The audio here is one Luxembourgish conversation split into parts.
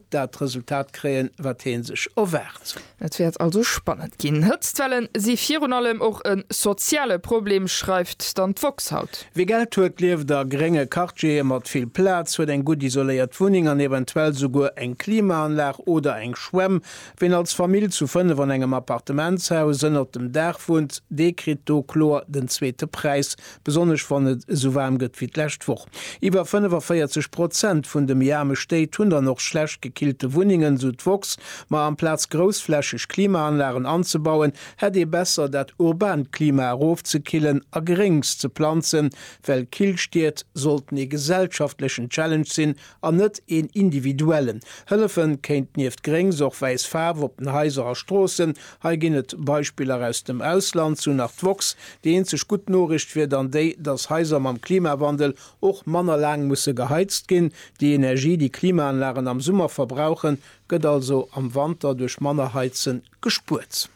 dat Resultat kréien, wat hee sech erwaart. Et wäert also spannend ginn. Hëtztwelle si virun allem och e soziale Problem, schreift dann d'woxx haut. Wie Geld huet, lieft a grénge Quartiere mat vill Plaz, huet eng gutt isoléiert Wunneng an eventuell souguer eng Klimaanlag oder eng Schwämm. Ween als Famill zu fënnef an engem Appartementshaus ënnert dem Daach wunnt, dee kritt do kloer den zweete Präis, Besonnesch wann et esou waarm gëtt wéi d'lescht Woch. Iwwer 45 Prozent vun de méi aarme Stéit hunn dann och schlecht gekillte Wunnengen, sou d'woxx. Ma amplaz groussflächeg Klimaanlagen anzebauen, hätt ee besser dat urbant Klima erofzekillen a Gréngs ze planzen, well Killstied sollten ee gesellschaftlechen Challenge sinn an net een individuellen. Hëllefen kéint nieft gréngs och wäiss Faarf op den Haiser a Stroossen. Hei ginn et Beispiller aus dem Ausland, sou nach d'woxx. Déi eenzeg gutt Noriicht wier dann déi, datt Haiser mam Klimawandel och manner laang musse geheizt ginn. Déi Energie, déi Klimaanlagen am Summer verbrauchen, gëtt also am Wanter duerch manner Heizen gespuert.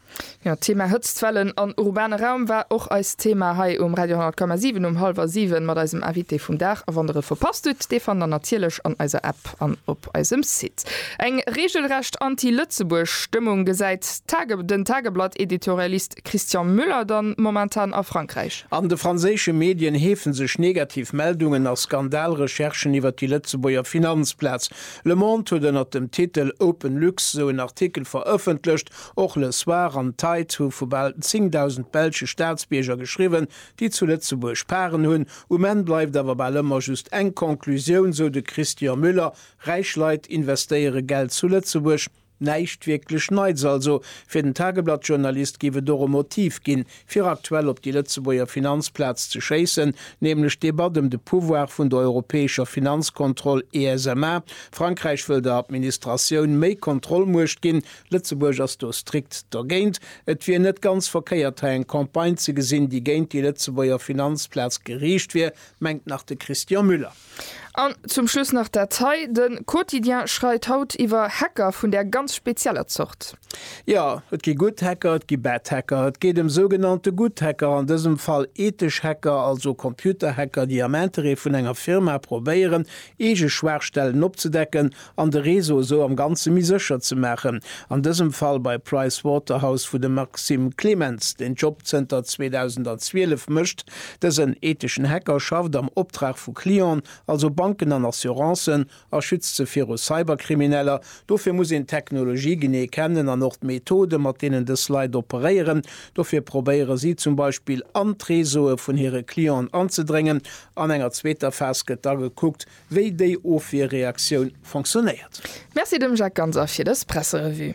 Jo, d'Thema Hëtztwellen an urbane Raum war och eist Thema hei um Radio 10,7 um hallwer 7 mat eisem Invité vum Dag. A wann der e verpasst hutt, dee fannt der natierlech an eiser App an op eisem Site. Eng reegelrecht anti-Lëtzebuerg Stëmmung gesäit den Tageblatt-Editorialist Christian Müller dann momentan a Frankräich. An de franséische Medien heefe sech negativ Meldungen a Skandal-Recherchen iwwer déi Lëtzebuerger Finanzplaz. Le Monde huet ënnert dem Titel OpenLux esou en Artikel verëffentlecht. Och Le Soir an d'Tides hu vu bal 10.000 belsche Staatsbierger geschriwwen, déi zu Lëtzebuerg Paren hunn. Um Enn bleift awer bal ëmmer just eng Conclusioun, sou de Christian Müller, Räich Leit investéiere Geld zu Lëtzebuerg. Näischt wierklech Neits also. Fir den Tageblatt-Journalist géif et och e Motiv ginn, fir aktuell op déi Lëtzebuerger Finanzplaz ze schéissen, nämlech d'Debatt ëm de Pouvoir vun der europäescher Finanzkontroll, ESMA. Frankräich wëll der Administratioun méi Kontrollmuecht ginn. Lëtzebuerg ass do strikt dergéint. Et wier net ganz verkéiert, hei eng Campagne ze gesinn, déi géint déi Lëtzebuerger Finanzplaz geriicht wier, mengt nach de Christian Müller. An zum Schluss nach dat hei, De Quotidien schreit haut iwwer Hacker vun där ganz spezieller Zort. Jo, et gi Good Hacker, et gi Bad Hacker. Et geet ëm sougenannte Good Hacker, an dësem Fall ethesch Hacker, also Computerhacker, déi am Interêt vun enger Firma probéieren, eege Schwaachstellen opzedecken an de Réseau esou am Ganze méi sécher ze maachen, an dësem Fall bei Price Waterhouse, wou de Maxime Clemens den Job zënter 2012 mécht. Dësen etheschen Hacker schafft am Optrag vu Clienten, also Banken an Assurancen, a schützt se viru Cyberkrimineller. Dofir muss een d'Technologie genee kennen an och d'Methode mat deenen dës Leit operéieren. Dofir probéiere si zum Beispill an d'Réseaue vun hire Clienten anzedréngen. An enger zweeter Phas gëtt da gekuckt, wéi déi Ofwierreaktioun fonctionnéiert. Merci dem Jacques Ganser fir dës Presserevue.